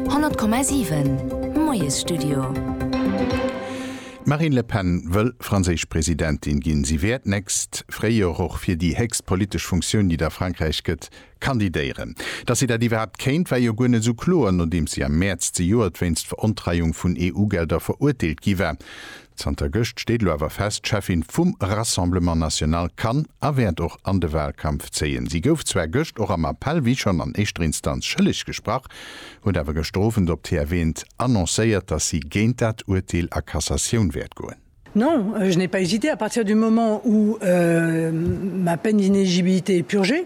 100,7 Moiesstudio. D'Marine Le Pen wëll franséisch Presidentin ginn. Si wäert d'nächst Fréijoer och fir déi héchst politesch Funktioun, déi et a Frankräich gëtt, kandidéieren. Datt si dat iwwerhaapt kéint, war jo guer net esou kloer, nodeems si am Mäerz zejoert wéinst Verontreiung vun EU-Gelder verurteelt gi war. Zanter gëscht steet elo awer fest, d'Cheffin vum Rassemblement National kann a wäert och an de Wahlkampf zéien. Si gouf zwar gëscht och am Appell, wéi schonn an éischter Instanz, schëlleg gesprach, huet awer gëschter Owend op TF eent annoncéiert, datt si géint dat Urteel a Cassatioun wäert goen. Non, je n'ai pas hésité, à partir du moment où ma peine d'inéligibilité est purgée.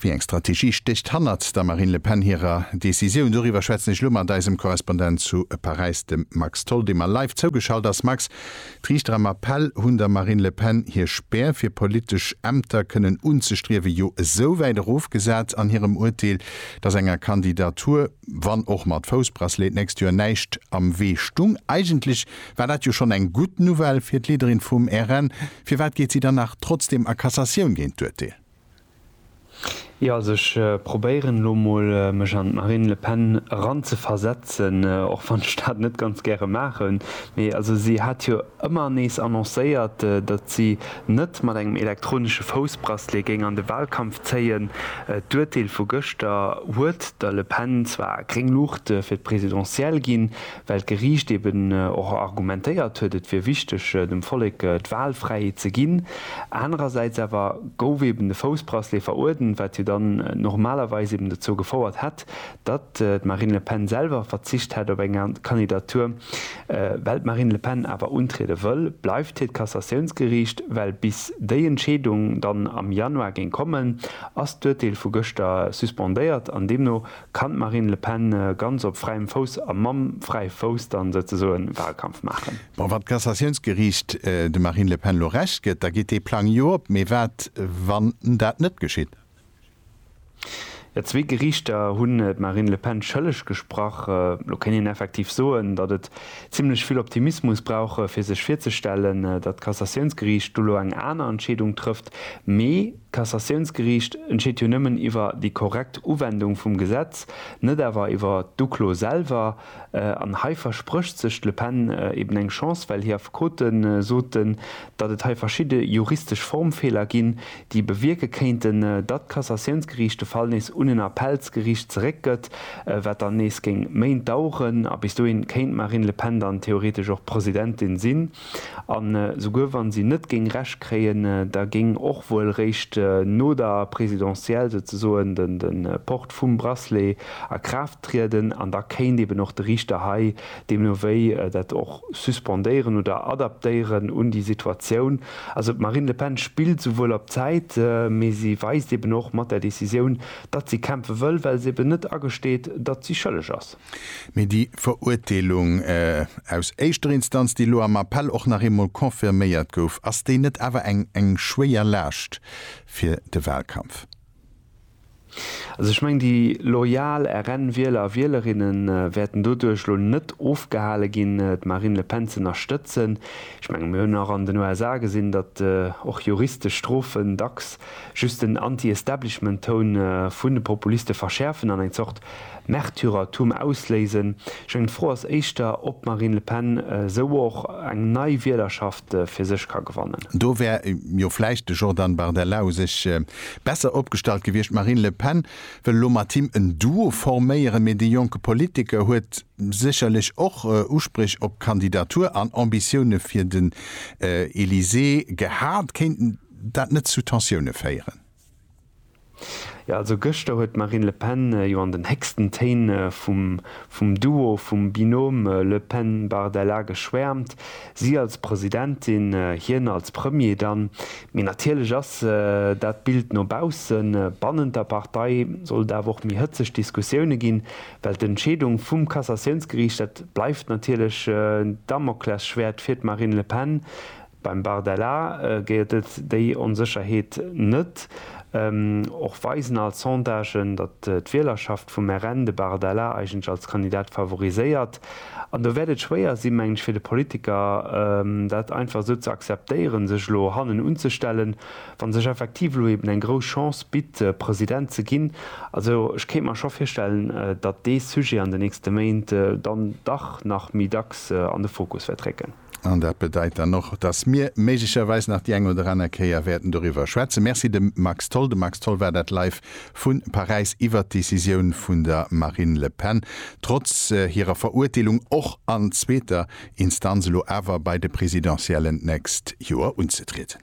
Wéi eng Strategie stécht hannert der Marine Le Pen hirer Decisioun? Doriwwer schwätzen ech elo mat eisem Korrespondent zu Paräis, dem Max Tholl, dee mer live zougeschalt ass. Max, d'Riichter am Appell hunn der Marine Le Pen hir Spär, fir politesch Ämter kënnen unzestriewen, jo esou wäit erofgesat an hirem Urteel, datt enger Kandidatur, wann och mat Foussbracelet, d'nächst Joer näischt am Wee stung. Eigentlech war dat jo schonn eng gutt Nouvelle fir d'Leaderin vum RN. Firwat geet si dann nach trotzdeem a Cassatioun géint d'Urteel? Jo also ech probéieren elo mol mech an d'Marine Le Pen eran ze versetzen, och wann ech dat net ganz gäre maachen. Mee also si hat jo ëmmer nees annoncéiert, datt si net mat engem elektronesche Foussbracelet géing an de Wahlkampf zéien. D'Urteel vu gëschter huet der Le Pen zwar gréng Luucht fir d'Presidentielle ginn, well d'Geriicht eben och argumentéiert huet, et wier wichteg, dem Vollek d'Wahlfräiheet ze ginn. Anerersäits awer gouf eben de Foussbracelet veruerdent, wat jo dann normalerweis eben dozou gefouert hätt, datt d'Marine Le Pen selwer verzicht hätt op eng Kandidatur. Well d'Marine Le Pen awer untriede wëll, bleift hiert Kassatiounsgeriicht, well bis déi Entscheedung dann am Januar géing kommen, ass d'Urteel vu gëschter suspendéiert an deemno Kann d'Marine Le Pen ganz op fräiem Fouss a mam fräie Fouss dann souzesoen Wahlkampf maachen? Bon, wann d'Cassatiounsgeriicht dem Marine Le Pen elo Recht gëtt, da geet dee Plang jo op. Mee wat, wann dat net geschitt? Jo, zwee Geriichter hunn d'Marine Le Pen schëlleg gesprach. Elo kéint een effektiv soen, datt et zimlech vill Optimismus brauch, fir sech virzestellen, datt d'Cassatiounsgeriicht do elo eng aner Entscheedung trëfft. Mee. D'Cassatiounsgeriicht entscheet jo nëmmen iwwer déi korrekt Uwendung vum Gesetz, net awer iwwer d'Uklo selwer. An hei versprécht sech d'Le Pen eben eng Chance, well hir Affekote soten, datt et hei verschidde juristesch Formfeeler ginn, déi bewierke kéinten, datt d'Cassatiounsgeriicht de Fall nees un en Appellsgeriicht zeréckgëtt, wat dann nees géing Méint daueren. A bis dohin kéint d'Marine Le Pen dann theoretesch och Presidentin sinn. An esouguer wann si net géing Recht kréien, da géing och wuel réischt no der Présidentielle souzesoen de Port vum Bracelet a Kraaft trieden an da kéint eben och de Riichter hei deemno wéi dat och suspendéieren oder adaptéieren un déi Situatioun. Also d'Marine Le Pen spillt esouwuel op Zäit, mee si weist eben och mat där Décisioun, datt si kämpfe wëll, well se eben net agesteet, datt si schëlleg ass. Mee déi Verurteelung aus éischter Instanz, déi elo am Appell och nach eemol confirméiert gouf, ass déi net awer eng schwéier Laascht fir de Wahlkampf? Also ech mengen, déi loyal RN-Wieler a Wielerinne wäerten doduerch elo net ofgehale ginn, d'Marine Le Pen z'ënnerstëtzen. Ech mengen, mir hunn och an den USA gesinn, datt och juristesch Strofen dacks just den Anti-Establishment-Toun vun de Populiste verschäerfen an eng Zort Märtyrertum ausléisen. Meng Fro ass éischter, ob d'Marine Le Pen esou och eng nei Wielerschaft fir sech ka gewannen. Do wär jo vläicht de Jordan Bardella u sech besser opgestallt gewiescht. D'Marine Le Pen wëll elo mat him en Duo forméieren, mee de jonke Politiker huet sécherlech och Uspréch op d'Kandidatur an Ambitioune fir den Elysée gehat. Kéint dat net zu Tensioune féieren? Jo also gëschter huet d'Marine Le Pen jo an den héchsten Téin vum vum Duo, vum Binôme Le Pen-Bardella geschwäermt. Si als Presidentin, hien als Premier dann. Mee natierlech ass dat d'Bild no baussen. Bannent der Partei soll et awer och méi hëtzeg Diskussioune ginn, well d'Entscheedung vum Cassatiounsgeriicht, dat bleift natierlech en Damoklesschwäert fir d'Marine Le Pen. Beim Bardella géet et déi Onsécherheet net. Och weisen all Sondagen, datt d'Wielerschaft vum RN de Bardella eigentlech als Kandidat favoriséiert. An do wäert et schwéier si meng ech fir de Politiker dat einfach esou ze akzeptéieren, sech elo hannen unzestellen, wa sech effektiv elo eben eng grouss Chance bitt President ze ginn. Also ech kéint mer scho virstellen, datt dee Sujet an de nächste Méint dann dach nach méi dacks an de Fokus wäert récken. An dat bedeit dann och, dass mir méiglecherweis nach déi eng oder aner Kéier wäerten doriwwer schwätzen. Merci dem Max Tholl. De Max Tholl war dat live vu Paräis iwwer d'Decisioun vun der Marine Le Pen, trotz hirer Verurteelung och an zweeter Instanz, elo awer bei de Presidentiellen d'nächst Joer unzetrieden.